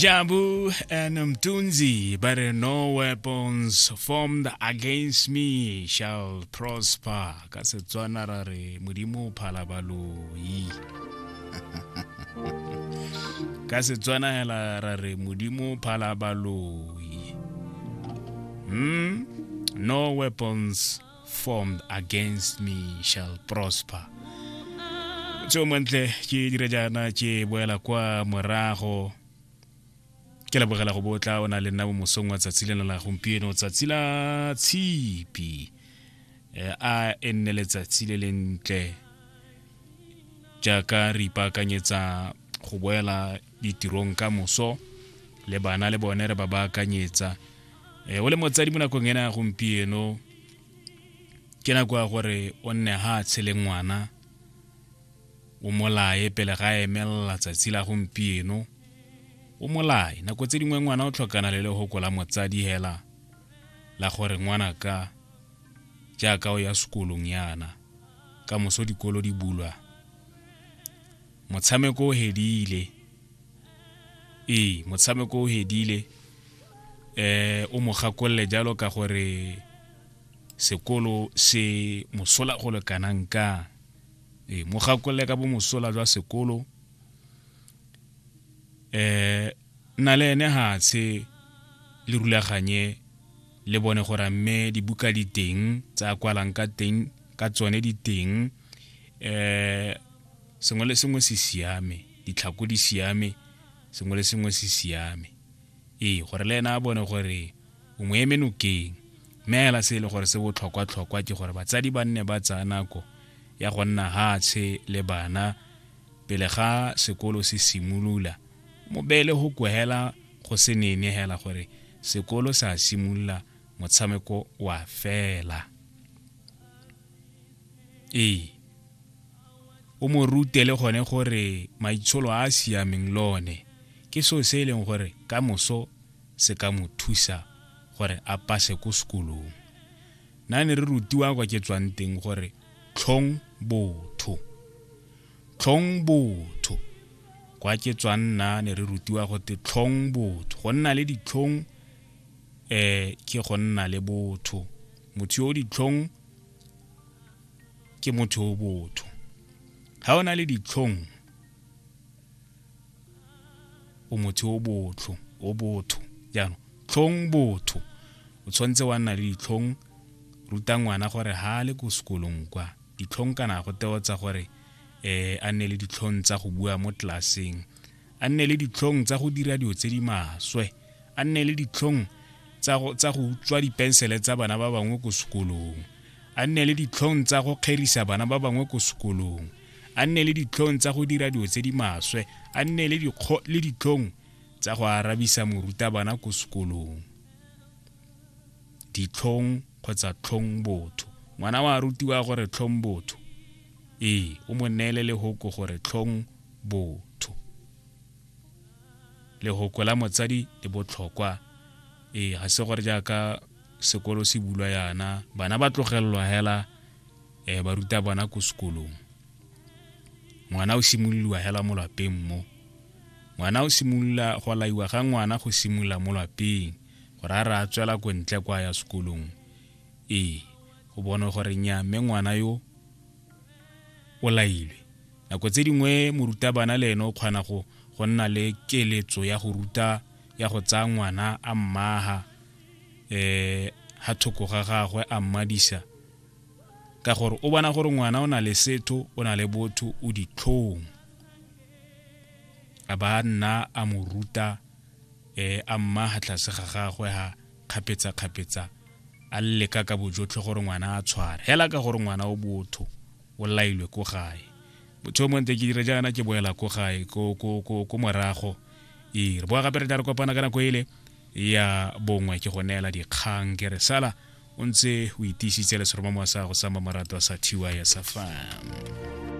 Jabu and Mtunzi, but no weapons formed against me shall prosper. Ka Setswana ra re modimo o phala baloi. Ka Setswana hela ra re modimo o phala baloi. Hmm? No weapons formed against me shall prosper tso mantle ke dire jaana ke boela kwa morago ke lebogela go botla o na le nna mo mosong wa tsatsi lena la gompieno tsatsi la tshipi Eh, a e nne letsatsi le lentle jaaka re ipaakanyetsa go boela ditirong ka moso le bana le bone re ba baakanyetsa e o le motsadi mo nakong ena ya gompieno ke nako ya gore o nne ga a tshele ngwana o molae pele ga emelela tsatsi la gompieno o molae nako tse dingwe ngwana o tlhokana le legoko la motsadi hela la gore ngwana ka jaaka o ya sekolong yana ka moso dikolo di bulwa Motshameko o hedile. Ee, motshameko o hedile. Eh, o mo gakolole jalo ka gore sekolo se mosola go le kanang ka. Ee, mo gakolole ka bo mosola jwa sekolo. Eh, nna le ene ha tshe le rulaganye le bone gore a mme dibuka di teng tsa kwalang ka teng ka tsone di teng eh sengwe le sengwe se siame ditlhako di siame sengwe le sengwe se siame ee gore le ena a bone gore o mo eme nokeng mme hela se e le gore se botlhokwa-tlhokwa ke gore batsadi ba nne ba tsaya nako ya go nna hatshe le bana pele ga sekolo se simolola mo beele go kwehela go se nene hela gore sekolo sa simolola motshameko wa fela ee o mo rute le gone gore maitsholo a a siameng le one ke seo se e leng gore ka moso se ka mo thusa gore a pase ko sekolong na ne re rutiwa kwa ke tswang teng gore tlhong botho tlhong botho kwa ke tswang nna ne re rutiwa go te tlhong botho go nna le ditlhong um ke go nna le botho motho yo o ditlhong ke motho o botho ga o na le ditlhong o motho o botlho o botho jaanong tlhong botho o tshwanetse wa nna le ditlhong ruta ngwana gore ha le ko sekolong kwa ditlhong kana go teotsa gore um a nne le ditlhong tsa go bua mo tlelaseng a nne le ditlhong tsa go dira dilo tse di maswe, a nne le ditlhong tsa go utswa dipensele tsa bana ba bangwe ko sekolong, a nne le ditlhong tsa go kgerisa bana ba bangwe ko sekolong, a nne le ditlhong tsa go dira dilo tse di maswe, a nne le ditlhong tsa go arabisa morutabana ko sekolong. Ditlhong kgotsa tlhong botho. Ngwana wa rutiwa gore tlhong botho. Ee, o mo neele lehoko gore tlhong botho lehoko la motsadi le botlhokwa ee ga se gore jaaka sekolo se bulwa yana bana ba tlogelelwa hela um ba ruta bona ko sekolong ngwana o simololiwa hela mo lapeng mo ngwana o simolola go laiwa ga ngwana go simolola mo lapeng gore a re a tswela ko ntle kwa ya sekolong ee go bone gore nya mme ngwana yo o lailwe. Nako tse dingwe morutabana le ene o kgona go go nna le keletso ya go ruta ya go tsaya ngwana a mmaga um ga thoko ga gagwe a mmadisa ka gore o bona gore ngwana o na le setho o na le botho o ditlhong a ba nna a mo ruta um a mmaga tlase ga gagwe ga kgapetsa-kgapetsa a leka ka bojotlhe gore ngwana a tshware hela ka gore ngwana o botho o lailwe ko gae motho o monte ke dire jaana ke boela ko gae ko morago ee re boa gape re tla re kopana ka nako ele ya bongwe ke go neela dikgang ke re sala o ntse o itiisitse le seromamowa sa go sa mmamoratwa sa tys fam